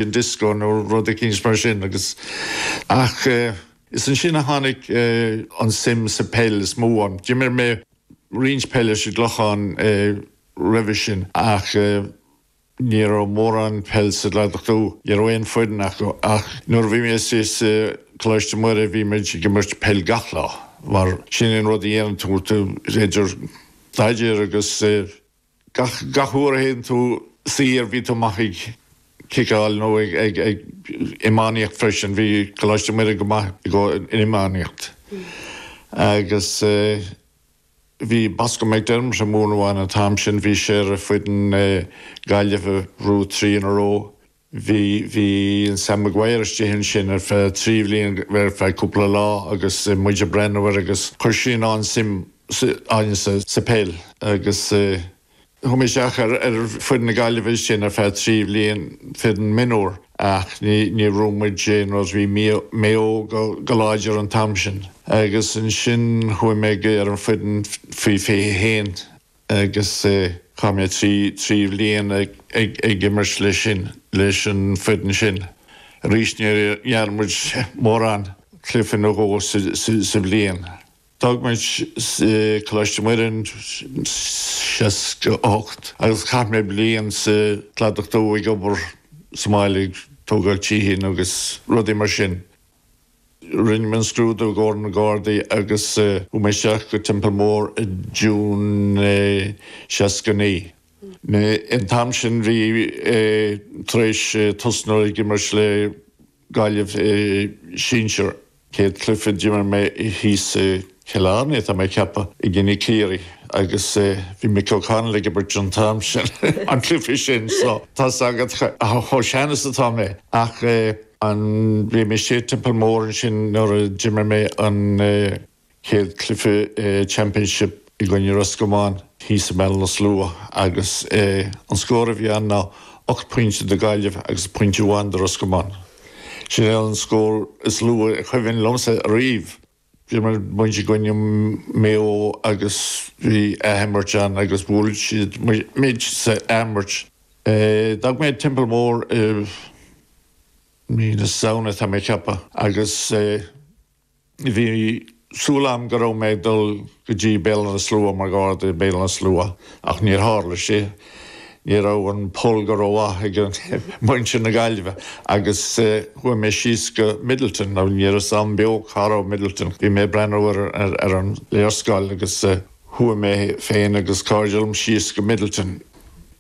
an disco nó rud eicínt mar sin agus, ach eh, is ansin a tháinig eh, an suim sa pheil is mó ionam. D'imir mé roinnt peil leis an gClochán eh, roimhe sin ach eh, ní raibh mórán peil sa gCladach Dubh, ní raibh aon foireann acu ach nuair a bhí mé sa sa Coláiste Muire bhí muid ag imirt peil gach lá mar sin an rud a dhéanann tú idir staidéar agus eh, Gach uair a théann tú saor bhí tú amuigh ag ciceáil nó ag iománaíocht freisin, bhí Coláiste Muire go maith i gcomhair an iománaíocht agus bhí Bosco McDermott ag múineadh ann an t-am sin, bhí sé ar foireann na Gaillimhe an three in a row. Bhí Sam Maguire istigh ansin ar feadh trí bhliain, ar feadh cúpla lá agus muid ag breathnú air agus chuir sé sin an-suim againn sa pheil agus chuaigh mé isteach ar foireann na Gaillimhe ansin ar feadh trí bhliain, foireann mionúr ach ní raibh muid in aon rud, bhí Maigh Eo go láidir an t-am sin. Agus ansin chuaigh mé ar an foireann faoi fiche haon. agus chaith mé trí trí bhliain ag imirt leis sin, leis an foireann sin. Arís, níor imir muid mórán, cluife nó dhó sa bhliain. D'fhág muid Coláiste Muire i seasca a hocht agus chaith mé bliain sa Cladach Dubh ag obair sa mbaile ag tógáil tithe agus rudaí mar sin. Rinne mé an scrúdú i gcomhair na Gardaí agus chuaigh mé isteach go Teampall Mór i June seasca naoi. An t-am sin bhí mé tar éis tosnú ag imirt le Gaillimh i sinsear céad cluiche a d'imir mé thíos i. Cill Airne, tá mé ag ceapadh i gcoinne Chiarraí agus bhí Mick O'Connell ag imirt an t-am sin an cluiche sin so tá a fhios agat chomh sean is atá mé ach an bhí mé sa Teampall Mór ansin nuair a d'imir mé an chéad cluiche championship i gcoinne Roscomáin thíos i mBéal Átha na Sluaighe agus an scór a bhí ann ná ocht bpointe do Gaillimh agus pointe amháin do Roscomáin. Sin é an scór is lú is cuimhin liomsa ariamh. D'imir muid i gcoinne Maigh Eo agus bhí athimirt ann agus bhuail siad muid sa athimirt. D'fhág mé an Teampall Mór i mí na Samhna tá mé ag ceapadh agus bhí súil agam go raibh mé ag dul go dtí Béal Átha na Sluaighe mar Gharda i mBéal Átha na Sluaighe ach níor tharla sé. Ní raibh an pull go rómhaith ag muintir na Gaillimhe agus chuaigh mé síos go Midleton, nó ní raibh a fhios 'am beo cá raibh Midleton. Bhí mé ag breathnú ar an léarscáil agus chuaigh mé féin agus cairde liom síos go Midleton.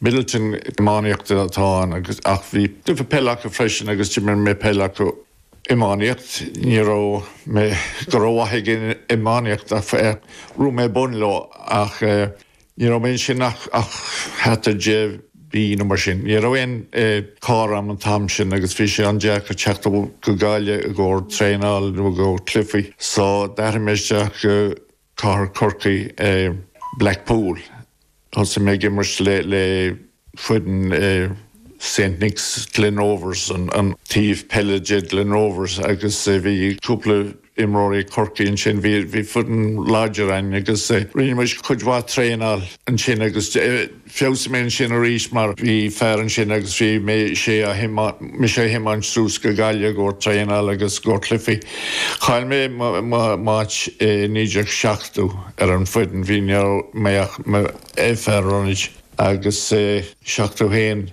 Midleton iománaíocht atá ann agus, ach bhí cluiche peile acu freisin agus d'imir mé peil acu. Iománaíocht, ní raibh mé go rómhaith ag an iománaíocht ach ghnóthaigh mé bonn leo ach Ní raibh ansin ach thart ar dhá mhí nó mar sin. Ní raibh aon charr 'am an t-am sin agus bhí sé an-deacair teacht go Gaillimh i gcomhair traenáil nó i gcomhair cluichí so d'athraigh mé isteach go cathair Chorcaí i Blackpool. Thosaigh mé ag imirt le. foireann i Saint Nicks Glen Rovers, an taobh peile de Glen Rovers agus bhí cúpla imreoir ag Corcaigh ansin. Bhí foireann láidir againn agus rinne muid cuid mhaith traenáil ansin agus feabhsaigh mé ansin arís mar bhí fear ansin agus bhí sé mise a thiomáint suas go Gaillimh i gcomhair traenáil agus i gcomhair cluichí. Chaill mé m'áit i 1970 ar an foireann, bhí ní raibh mé ach mar fhear ionaid. Agus i 71,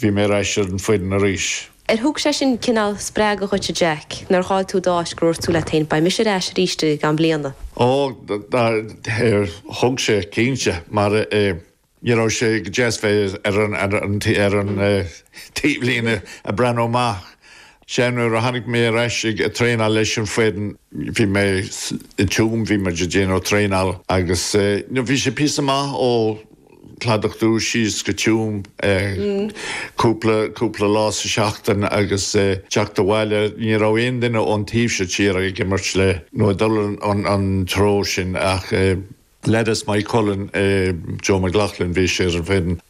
bhí mé ar ais ar an foireann arís. Ar thug sé sin cineál spreagadh dhuit, a Jack? Nuair a chaill tú d'áit gur dhúirt tú leat féin, Beidh mise ar ais arís i gceann bliana? Ó, thug sé, cinnte. Mar ní raibh sé go deas bheith ar an taobhlíne ag breathnú amach Sea, nuair a tháinig mé ar ais ag traenáil leis an foireann, bhí mé i dTuam, bhí muid ag déanamh traenáil agus bhí sé píosa maith ó Chladach Dubh síos go Tuam, cúpla, cúpla lá sa seachtain agus teacht abhaile, ní raibh aon duine ón taobh seo tíre ag imirt le, nó ag dul an, an treo sin ach leaids Moycullen, Joe McLoughlin, bhí sé ar an bhfoireann.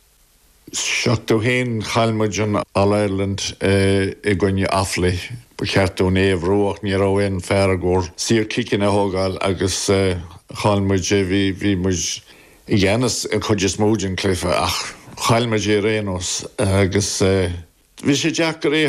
71 Chaill muid an All Ireland i gcoinne Offaly. Ba cheart dúinn é a ghnóthú ach ní raibh aon fear i gcomhair saorchiceanna a thógáil agus chaill muid é. Bhí muid i gceannas an chuid is mó den cluiche ach chaill muid é ar aon nós agus bhí sé deacair é a